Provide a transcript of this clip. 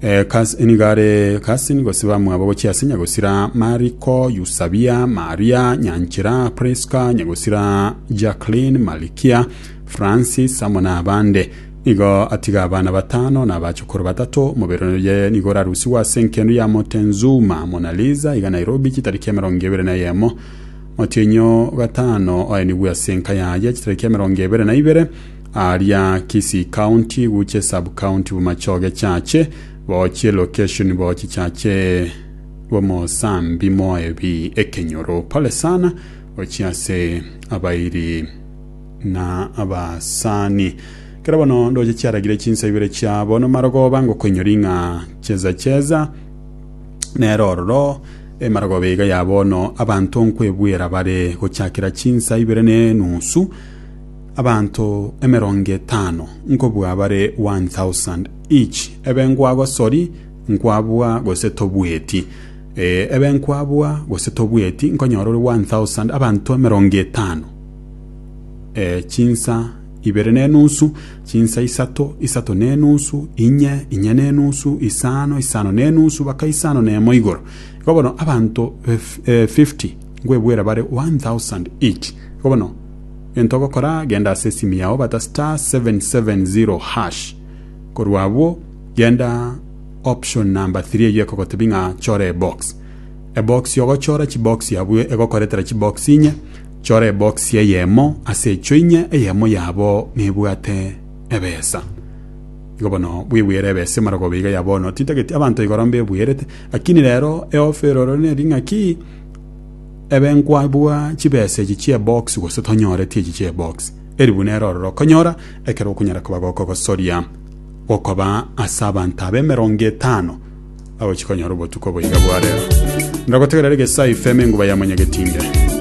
Ekasin, nigo are Kasin, gose bamwabo gochia ase nyagosira Mariko, Yusabia, Maria, Nyanchera, Priska, nyagosira Jacqueline, Malikia, Francis, amo n'abande. Nigo atiga abana batano na abachokoro batato. Omobere oye nigo orarusigwe ase enkendo ya Motenzuma, Mona Lisa, iga Nairobi, chitariki emerongo ebere na eyemo. Motienyi o gatano oenigwe ase enka yaye, chitariki emerongo ebere na ibere. Aaria Kisii County guche sub county bomachoge chache bochie location bochi chache bomosambi moebi ekenyoro pole sana gochia ase abairi na abasani kero bono ndoche chiaragire chinsa ibere chia bono marogoba ngokoinyori ng'a cheza cheza nero ororo emarogoba iga ya bono abanto nkwebwera bare gochakera chinsa ibere ne nusu Abanto emerongo etano nkobua bare one thousand each, ebe nkwagosori, nkwabua, gose tobueti. Ee, ebe nkwabua, gose tobueti, nkonyora ore one thousand, abanto emerongo etano. Ee, chinsa ibere na enusu, chinsa isato, isato na enusu, inye, inye na enusu, isano, isano na enusu, baka isano na emo igoro. Igo bono abanto eh, eh, fifty nkwebuera bare one thousand each. Igo bono Gento ogokora, genda ase esimu yao bata star seven seven zero hash. Korwa abwo genda option number three eyio ekogotebia ng'a chora ebox. Ebox ogochora chibox abwo egokoretera chibox inye, chora ebox eyemo ase echio inye eyemo yabo nebwate ebesa. Igo bono bwebwere ebesa emara koba iga ya bono titageti abanto igoro mbebwerete lakini rero eofa eroro neri ng'aki ebe nkwabua chibesa echi chi'ebox gose tonyoreti echi chi'ebox, eri buna ere ororo okonyora ekero okonyara koba gokogosoria gokoba ase abanto aba emerongo etano bagochia konyora obotuko boiga bwa rero. Ndagotegerere Gesaifeme enguba ya Monyagetinge.